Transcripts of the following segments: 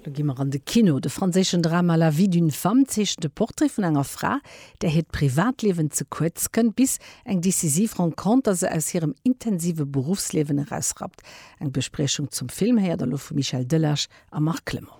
Lo gi mer an de Kino. De franséischen Drama La vie d'une femme zeechent de Portrait vun enger Fra, där hiert Privatliewen ze kuerz kënnt, bis eng decisiv Renconter se aus hirem intensive Beruffsliewen erausrappt. Eng Bespriechung zum Film héiert der lo vum Michel Delage a Marc Clement.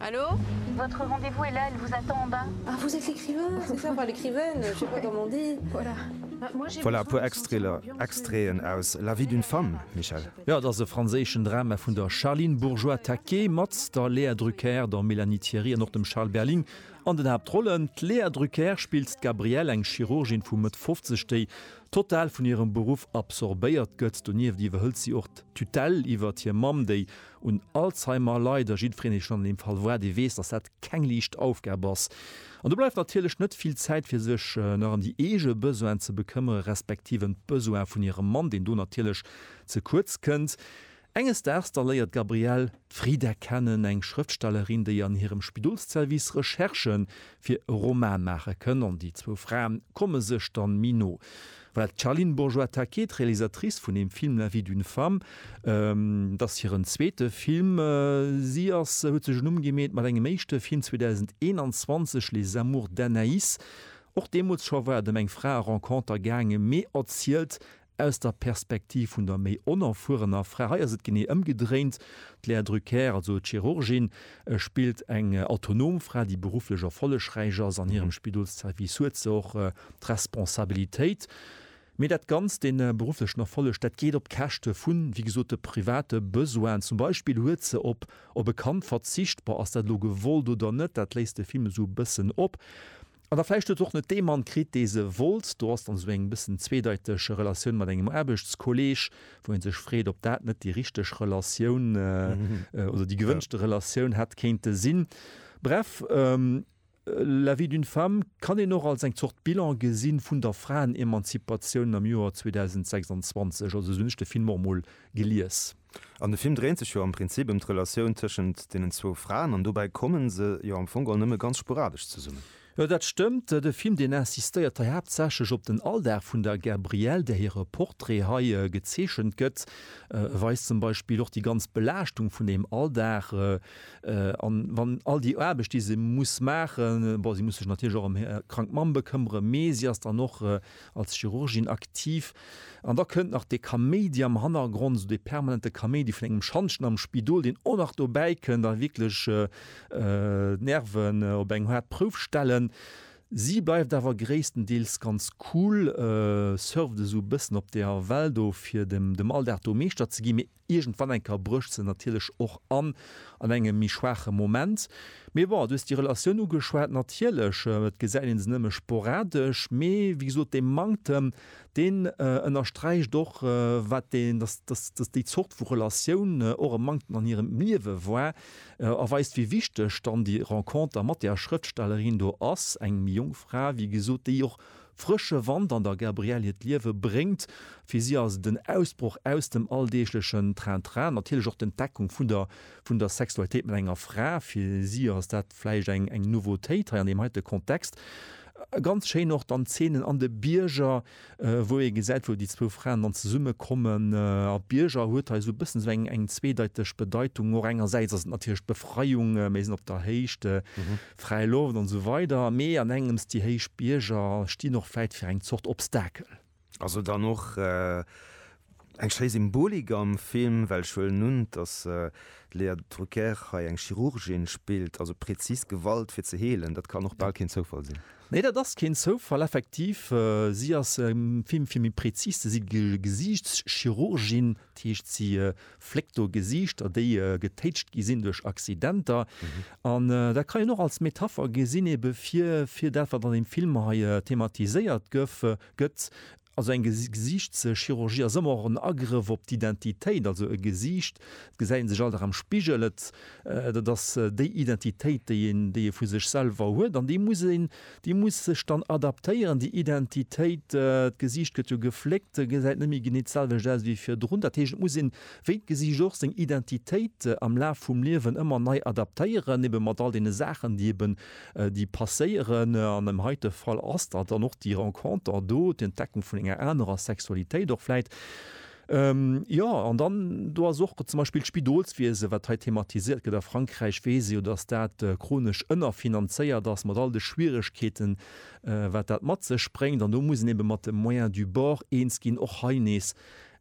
Hallo? Votre rendez-vous est là, il vous attend en bas. Ah, vous êtes l'écrivain, c'est ça, enfin l'écrivaine, je sais pas comment on dit. Voilà. Voilà e puer Extraiter, Extraiten aus La vie d'une femme, Michèle. Jo, et ass e franséischen Drama vun der Charline Bourgeois-Taquet mat der Léa Drucker, der Mélanie Thierry an och dem Charles Berling an den Haaptrollen. D'Léa Drucker spillt d'Gabrielle, eng Chirurgin vu Mëtt 50, déi total vun hirem Beruff absorbéiert gëtt. Donieft iwwerhëlt si och d'Tutelle iwwert hir Mamm, déi Un Alzheimer leit a jiddwereen, dee schonn an deem Fall war, dee weess, datt dat keng liicht Aufgab ass. An do bleift natierlech net vill Zäit, fir sech nach ëm déi eege Besoinen ze bekëmmere respektiv ëm d'Besoin vun hirem Mann, deen do natierlech ze kuerz kënnt. Enges Daags da léiert d'Gabrielle d'Frida kennen, eng Schrëftstellerin, déi an hirem Spidolsservice Recherchë fir e Roman maache kënn. An déi zwou Frae komme sech da méi no. Voilà, d'Charline Bourgeois-Taquet, d'Realisatrice vun dem Film La vie d'une femme, et ass hiren zweete Film. Si ass, huet sech en Numm gemeet mat engem éischte Film 2021, Les amours d'Anaïs. Och deemools scho war et ëm eng Frae-Renconter gaangen, mee erzielt aus der Perspektiv vun der méi onerfuerener Fra. Hei ass et genee ëmgedréint, d'Léa Drucker, also d'Chirurgin, E spillt eng autonom Fra, déi berufflech erfollegräich ass. An hirem Spidolsservice huet se och d'Responsabilitéit. Mee dat Ganzt, dee berufflechen Erfolleg, dat geet op Käschte vu wéi gesot de private Besoinen. Zum Beispill huet se op op e Kand verzicht. Bon, ass dat elo gewollt oder net, dat léisst de Film esou e bëssen op. An da vläicht huet se och net dee Mann kritt, dee se wollt. Do ass dann esou eng bëssen zweedeiteg Relatioun mat engem Aarbechtskolleeg, wou ee sech freet, ob dat net déi richteg Relatioun oder déi gewënschte Relatioun hätt kéinte sinn. Bref, La vie d'une femme kann een och als eng Zort Bilan gesi vun der Fraenemanzipatioun am Joer 2026. Also esou hunn ech de Film och emol gelies. An de Film dréint sech jo am Prinzip ëm d'Relatioun tëschent deenen zwou Fraen, an dobäi komme se jo am Fong geholl nëmme ganz sporadesch zesummen. Jo, dat stëmmt. De Film, deen insistéiert hei haaptsächlech op den Alldag vun der Gabrielle, där hire Portrait hei gezeechent gëtt. E weist zum Beispill och déi ganz Belaaschtung vun deem Alldag an, wann all déi Aarbecht, déi se muss maachen, bon, si muss sech natierlech och ëm hir krank Mamm bekëmmeren, mee si ass dann och als Chirurgin aktiv, an da kënnt nach dee Kaméidi am Hannergrond, esou dee permanente Kaméidi vun engem Schantjen am Spidol, deen och nach dobäi kënnt a wierklech d'Nerven op eng haart Prouf stellen. Si bleift awer gréisstendeels ganz cool, surft esou e bëssen op der Well do, fir dem Alldag do Meeschter ze ginn, mee Iergendwann eng Kéier brécht se natierlech och an, an engem méi schwaache Moment. Mee bon, du hues déi Relatioun ugeschwat, natierlech, et gesäit ee se nëmme sporadesch, mee wéi gesot, dee Manktem, deen ënnersträicht och, wat deen, dass, dass, dass déi Zort vu Relatioun och e Manktem an hirem Liewe war, a weist, wéi wichteg dann déi Renconter mat där Schrëftstellerin do ass, eng méi jonk Fra, wéi gesot, déi och Frësche Wand an der Gabrielle hiert Liewe bréngt. Fir si ass et en Ausbroch aus dem alldeeglechen Train-Train, natierlech och d'Entdeckung vun der vun der Sexualitéit mat enger Fra. Fir si ass dat vläicht eng eng Nouveautéit hei an deem heite Kontext. Ganz schéin och dann d'Zeenen an de Bierger, wou ee gesäit, wou déi zwou Fraen dann zesumme kommen. A Bierger huet hei esou e bëssen esou eng eng zweedeiteg Bedeitung. Och engersäits ass et natierlech d'Befreiung, mir sinn op der Héicht, Fräi Loft an esou weider, mee an engems, déi héich Bierger stinn och vläit fir eng Zort Obstakel. Ass et dann och eng schéi Symbolik am Film, well ech huelen un, dass d'Léa Drucker hei eng Chirurgin spillt, also präzis Gewalt fir ze heelen, dat kann och bal keen Zoufall sinn. Nee, dat ass keen Zoufall, effektiv. Si ass am Film, fir méi präzis ze si, Gesiichtschirurgin, dat heescht si fléckt do Gesiichter, déi getéitscht gi sinn duerch Accidenter. An dat kann een och als Metapher gesinn ebe fir, fir dat, wat an deem Film hei thematiséiert gëff, gëtt. Also eng Gesiichtschirurgie ass ëmmer och en Agrëff op d'Identitéit. Also e Gesiicht, et gesäit ee sech all Dag am Spigel, et, dat ass déi Identitéit, déi een, déi ee vu sech selwer huet an déi muss een, Déi muss sech dann adaptéieren, déi Identitéit. D'Gesiicht gëtt jo gefléckt, gesäit net méi genee d'selwecht aus wéi virdrun. Dat heescht, et muss een, wéi d'Gesiicht och, seng Identitéit am Laf vum Liewen ëmmer nei adaptéieren, ebe mat all deene Saachen, déi eben, déi passéieren. An dem heite Fall ass dat dann och déi Renconter do, d'Entdeckung vun enger anerer Sexualitéit och vläit. Jo, an dann, do ass och zum Beispill d'Spidolswiese, wat hei thematiséiert gëtt. A Frankräich weess ee jo, datt dat chronesch ënnerfinanzéiert ass, mat all de Schwieregkeeten, wat dat mat sech bréngt. An do muss een ebe mat de Moyens du bord eens ginn. Och hei nees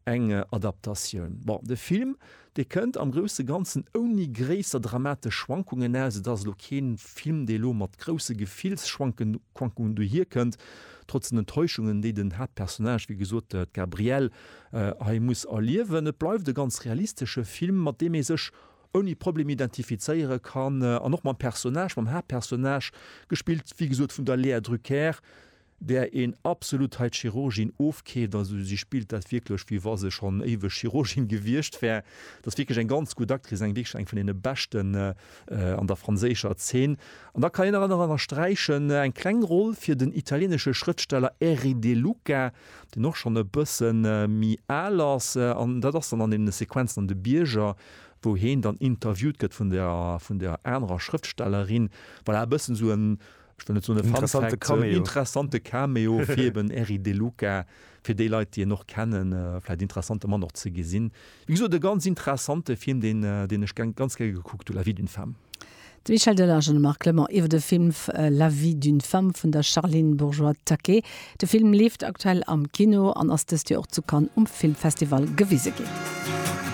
eng Adaptatioun. Bon, de Film, Dee kënnt am grousse Ganzen ouni gréisser dramatesch Schwankungen aus. Et ass elo kee Film, dee elo mat grousse Gefillsschwankungen dohier kënnt, trotz den Enttäuschungen, déi den Haaptpersonnage, wéi gesot, d'Gabrielle, hei muss erliewen. Et bleift e ganz realistesche Film, mat deem ee sech ouni Problem identifizéiere kann an och mam Personnage, mam Haaptpersonnage, gespillt, wéi gesot, vun der Léa Drucker, där een absolut hei d'Chirurgin ofkeeft, also si spillt dat wierklech wéi wa se schonn éiweg Chirurgin gewiescht wär, dat ass wierklech eng ganz gutt Actrice, eng wierklech eng vun deene beschten an der franséischer Zeen. An da kann een nach ënnersträichen eng kleng Roll fir den italieenesche Schrëftsteller Erri De Luca, deen och schonn e bësse méi al ass, an dat ass dann an deene Sequenzen an de Bierger, wou heen dann interviewt gëtt vun der anerer Schrëftstellerin, voilà e bëssen esou en. ech wëll net soen e Fun Fact, interessante Cameo. interessante Cameo fir eben Eric De Luca, fir déi Leit déi en och kennen, vläit interessante Mann och ze gesinn. Wéi gesot e ganz interessante Film deen deen ech gern ganz gär gekuckt hu, La vie d'une femme. De Michel Delage an de Marc Clement iwwer de Film La vie d'une femme vun der Charline Bourgeois-Taquet. De Film leeft aktuell am Kino an ass dëst Joer och zu Cannes um Filmfestival gewise ginn.